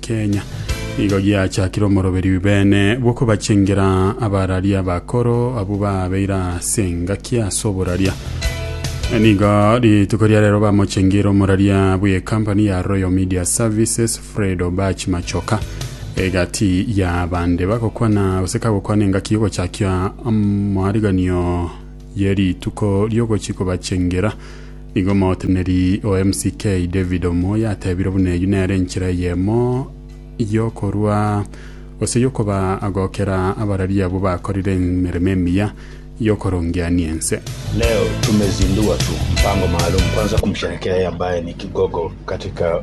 Kenya. Igo giachakire omoroberi bw'ebibeene bw'okobachengera abarari abakoro abwo baabeire ase engaki ase oboraria. Nigo rituko ria rero bamochengire omoraria bw'ekampani ya Royal Media Services Fred Obach Machoka egati ya bande bagokwana gose kagokwana engaki y'ogochakia amariganio ye rituko ri'ogochi kobachengera Nigo omoteneneri o MCK David Omoyo atebire buna eyio nere enchera eyemo y'okorua gose y'okoba agokera abarari abwo bakorire emeremo emiya y'okorongeania ense. Leo tumezindua tu mpango maalum kwanza kumsherekea yeye ambaye ni kigogo katika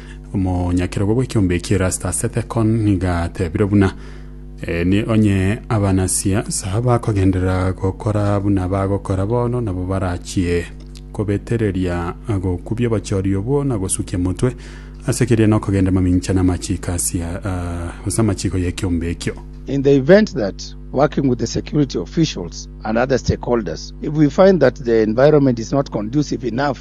Omonyakerogo bw'ekiombe eki Erastus Ethekon nigo atebire buna eh, onye abanasiasa bakogenderera gokora buna bagokora bono nabo barachie kobetereria gokubia obochori obwo na gosukia motwe ase keria nokogenda mamincha na amachiko asia uh, ase amachiko y'ekiombe ekio. In the event that, working with the security officials and other stakeholders, if we find that the environment is not conducive enough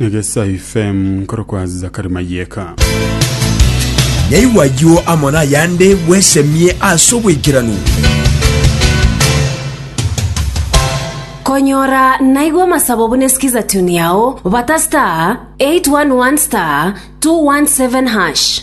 Negesa FM nkorokwa Zakari Mayeka. Naigwe ayio amo nayande bwesemie ase oboikeranu. Konyora naigwe amasabo buna sikiza tune yao, bata star 811 star 217 hash.